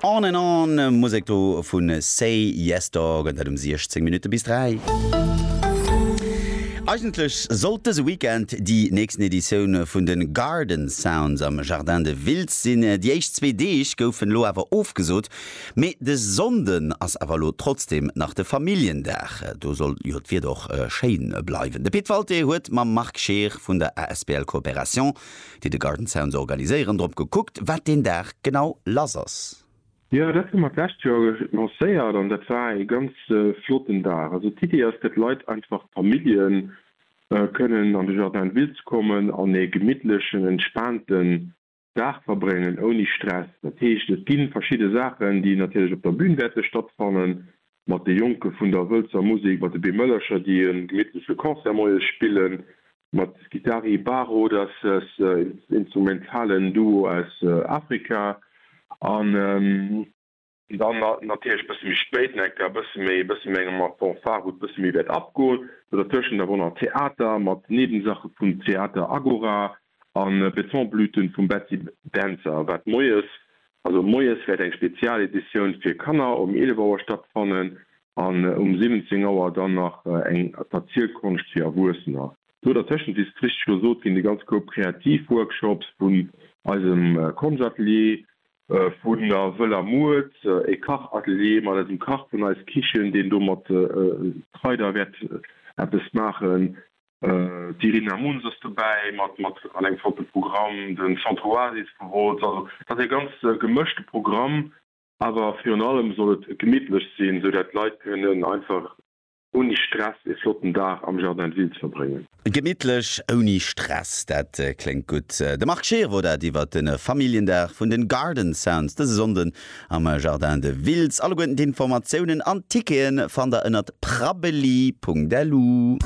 On and On, Musek do vu Say Yes Dog, an dat um 16 Minutte bis 3. Eigentlech sollt dëse Weekend déi nächsten Editioun vun de Garden Sounds am Jardin de Wiltz sinn. Déi éischt zwee Deeg goufen elo awer ofgesot. Mee de Sonnden ass awer elo trotzdeem nach de Familljendag. Do soll jo d'Wieder och schéin bleiwen. De Pit Walté huet mam Marc Scheer vun der asbl Coopération déi de Garden Sounds organiséieren, drop gekuckt, wat deen Dag genau lass ass. Jo, dat hu mer d'lescht Joer lancéiert an dat war ee ganz flotten Dag. Also d'Iddi ass, fir d'Leit einfach, d'Famillje kënnen an de Jardin de Ville ze kommen an ee gemittlechen, entspaanten Dag verbréngen, ouni Stress. Dat heescht, et gi verschidde Saachen, déi natierlech op der Bün wäerte stattfannen, Mat de Jonke vun der Wëlzer Musik, mat de Beemëllercher, déi e gemittleche Concert moies spillen, mat Guitari Baro, dass ass en instrumentalen Duo aus Afrika, an. Dann natierlech e bësse méi spéit, Necker, e bësse méi, e bësse méi eng Art Fanfare, wou et e bësse méi wäert abgoen. Dertëschent awer och nach Theater mat Nebensache vun Theater Agora, An Betonblüten vum Betsy Dentzer wat moies, also moies wäert eng Spezialeditioun fir Kanner um 11 Auer stattfannen an um 17 Auer dann nach eng Verzielkonscht fir Erwuessener. Do dertëschent wies et richteg gesot ginn, de ganz Koup Kreativworkshops vun eisem Konschatelier, vun der Wëller Mued, e Kachatelier mat eisem Kach vun Eis Kichen, deen do mat Kraider wäert eppes maachen, D'Irina Muns ass dobäi mat mat an engem flotte Programm, den Centre Oasis vu Wolz. Also et ass ee ganz gemëschte Programm, awer virun allem soll et gemittlech sinn, esou dat d'Leit kënnen einfach ouni Stress ee flotten Dag am Jardin de Ville ze verbréngen. Gemittlech ouni Stress, dat kléngt gutt. De Marc Scheer wor dat iwwer de Familljendag vun den Garden Sounds dëse Sonnden am Jardin de Wiltz. Alleguerten d'Informatiounen an d'Tickete fannt der ënnert prabbeli.lu.